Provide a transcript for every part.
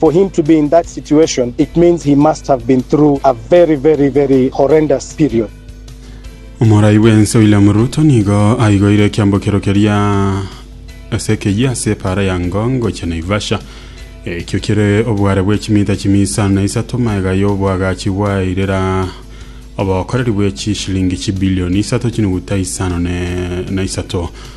For him to be in that situation it means he must have been through a very very very horrendous period. Omorai bw'ense William Ruto nigo aigoire ekiambokero keria ase ekeyia ase epaara ya Ngong gochia Naivasha. Ekio kere obware bwe chimita chimia isano na isato, maega y'oboagachi bwairera obokoreri bwe chishilingi chibilioni isato chinuguta isano ne- na isato.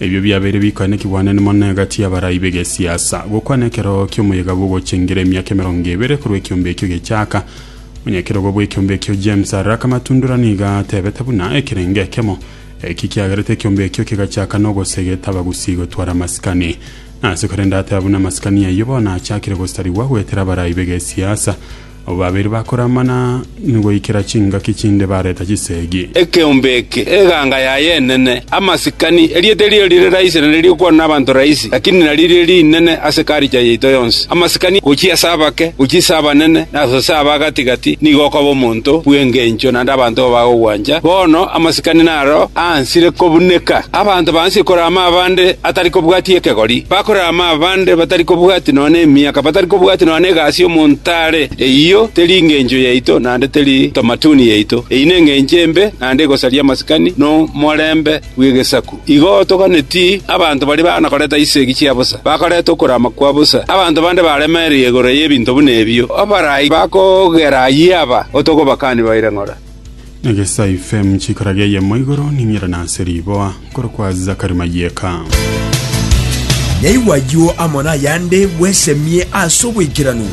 Ebio biabeire bikoene kigwanani mono egati y'abarai b'egesiasa. Gokwana ekero ki'omoyega bw'ogochengera emiaka emerongo ebere korwa ekiombe ekio gechaaka, Onyekerogo bw'ekiombe ekio James Arraka Matundura nigo atebete buna ekerenge ekemo eki kiagerete ekiombe ekio kegachaaka n'ogosegeta abagusi gotwara amasikani ase korende ateba buna amasikani ayio bono achakire gosarigwa goetera abarai b'egesiasa Abwo babere bakoramana ngoikera chingaki chinde bareta chisegi. Ekeombe eke, eganga yaye enene, amasikani, erieta erio rire raisi na nerigokwanwa nabanto raisi, lakini naririo rinene ase culture yaito yonsi. Amasikani gochia ase abake, gochia ase abanene, na ase aba gati-gati nigo okoba omonto bw'engencho naende abanto igo bagogwancha. Bono amasikani naro aansire kobuneka. Abanto baansie korama abande atari kobwatia ekegori. Bakorama. Abande batari kobwatia nonya nemiaka, batari kobwatia nonya negasi y'omonto are, eyio teri engencho yaito, naende teri tamatuni yaito. Eyio nengencho embe, naende egosaria amasikani na omorembe bw'egesaku. Igo toganeti abanto baria bana koreta chisegi chia bosa, bakareta okorama kwa bosa. Abanto bande baremereire igoro y'ebinto buna ebio, abarai bakogera ayio aba, otogobakani baire ng'ora. Egesai fm chikora geyemo igoro ning'ira nase riboa nkoro kwa zakari mayeka Naigwa ayio amo nayande bwesemie ase obwekeranu.